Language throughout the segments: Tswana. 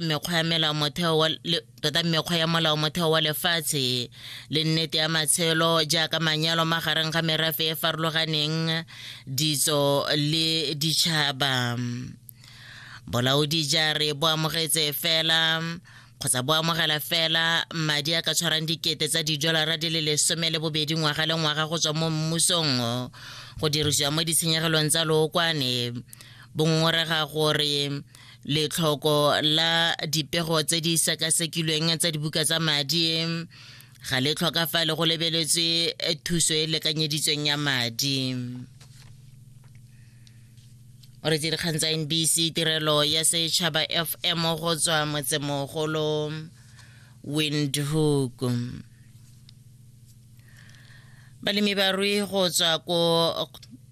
mekgwa ya melao motheo wa tota mekgwa ya molao motheo wa lefatshe le nnete ya matshelo jaaka manyalo magareng ga merafe e farologaneng ditso le ditšhaba bolaodi jare bo amogetse fela kgotsa bo amogela fela madi a ka tshwarang dikete tsa didolara di le lesome le bobedi ngwaga le ngwaga go tswa mo mmusong go dirisiwa mo ditshenyegelong tsa lookwane bongongorega gore letlhoko la dipego tse di sekasekilweng tsa dibuka tsa madi ga le tlhoka fa le go lebeletswe eh, thuso e lekanyeditsweng ya madi o re dikgang tsa nbc tirelo ya setšhaba fm go tswa motsemogolo windhoek balemi ba rui go tswa ko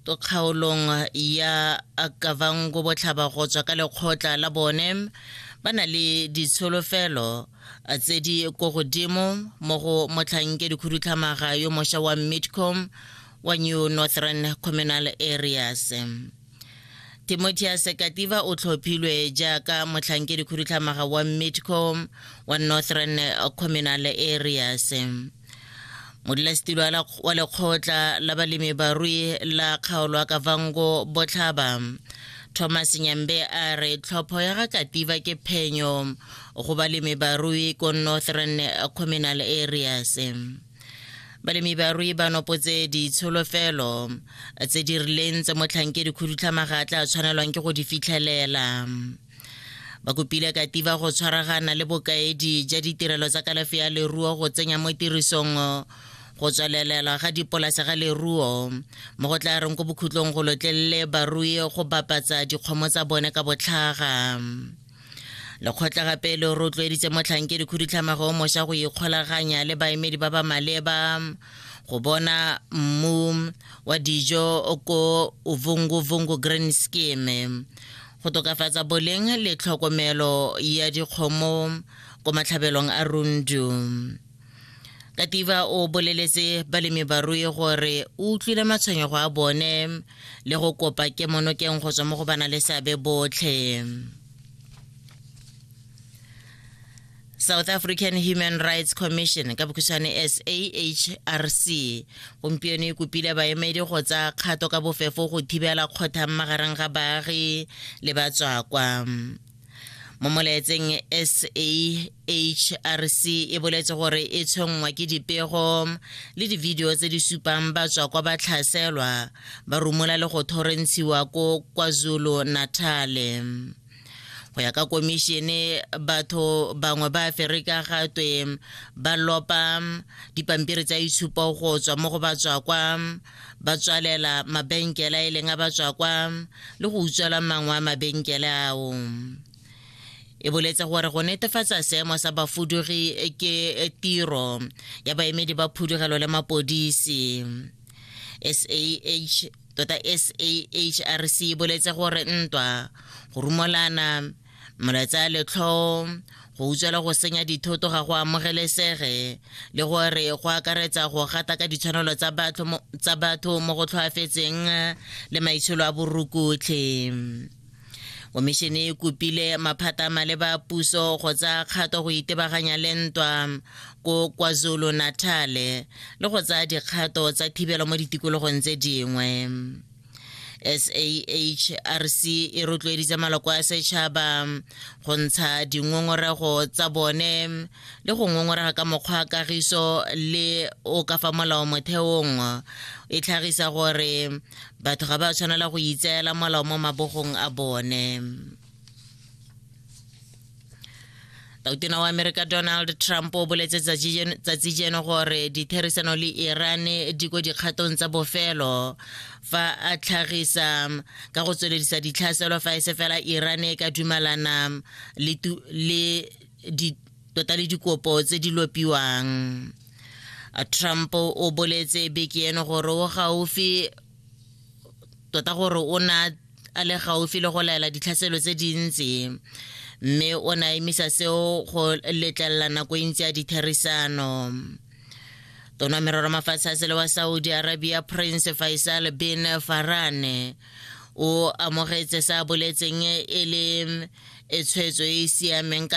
kgaolong ya kavango botlhaba go tswa ka lekgotla la bone ba na le ditsholofelo eh, tse di ko godimo mo go motlhankedikhudutlhamaga yo mosha wa midcom wa new northern communal areas timotheus kativa o tlhophilwe jaaka motlhankedikhudutlhamaga wa midcom wa northern communal areas modulasetilo wa lekgotla la balemi barui la kgaolo a kavango botlhaba thomas nyambe a re tlhopho ya ga kativa ke phenyo go balemi barui ko northern communal areas balemi barui ba nopotse ditsholofelo tse di rileng tse motlhankedi khudutlhamaga a tla tshwanelwang ke go di fitlhelela ba kopile kativa go tshwaragana le bokaedi ja ditirelo tsa kalafi ya leruo go tsenya mo tirisong go tswalelelwa ga dipolase ga leruo mo go tla reng ko bokhutlong go lotlelele barui go bapatsa dikgomo tsa bone ka botlhaga lekgotla gape le rotloeditse motlhankedi khudutlhamago o mošwa go ikgolaganya le baemedi ba ba maleba go bona mmu wa dijo ko uvungu vungu green scheme go tokafatsa boleng le tlhokomelo ya dikgomo ko matlhabelong a rundu katiba o boleletse balemi barui gore o utlwile matshwenyego a bone le go kopa kemonokeng go tswa mo go bana le seabe botlhe south african human rights commission ka bokhutshwane sahrc gompieno e kopile baemedi go tsa kgato ka bofefo go thibela kgothang magareng ga baagi le batswakwa mo molaetseng sahrc e boletse gore e tshwenngwa ke dipego le dividio tse di supang batswakwa ba tlhaselwa ba rumola le go thorentshiwa ko kwazulu natale go ya ka komišene batho bangwe ba aferika ga twe ba lopa dipampiri tsa itshupo go tswa mo go batswakwa ba tswalela mabenkela e leng a batswakwa le go utswela mangwe a mabenkele ao e boletse gore go netefatsa seemo sa bafudugi ke tiro ya baemedi ba phudugelo le mapodisi sah tota sahrc e boletse gore ntwa go rumolana molaetsa letlhoo go utswela go senya dithoto ga go amogelesege le gore go akaretsa go gata ka ditshwanelo tsa batho mo go tlhoafetseng le maitsholo a borukutlhe komišene e kopile maphata maleba a puso go tsaya kgato go itebaganya le ntwa ko kwazulu natale le go tsaya dikgato tsa thibelo mo ditikologong tse dingwe sahrc e rotloeditse maloko a setšhaba go ntsha dingongorego tsa bone le go ngongorega ka mokgwa a kagiso le o ka fa molao motheong e tlhagisa gore batho ga ba tshwanela go itseela molao mo mabogong a bone tautona wa amerika donald trump o boletse tsatsi jeno gore ditherisano le iran di ko dikgatong tsa bofelo fa a tlhagisa ka go tsweledisa ditlhaselo fa e se fela iran e ka dumalana le tota le dikopo tse di lopiwang trump o boletse beke eno gore o gaufi tota gore o na a le gaufi le go laela ditlhaselo tse dintsi mme o ne a emisa seo go letlelela nako e ntsi ya ditherisano tona merero mafatshe a sele wa saudi arabia prince faisal bin farane o amogetse sa boletseng e le e tshwetso e e siameng ka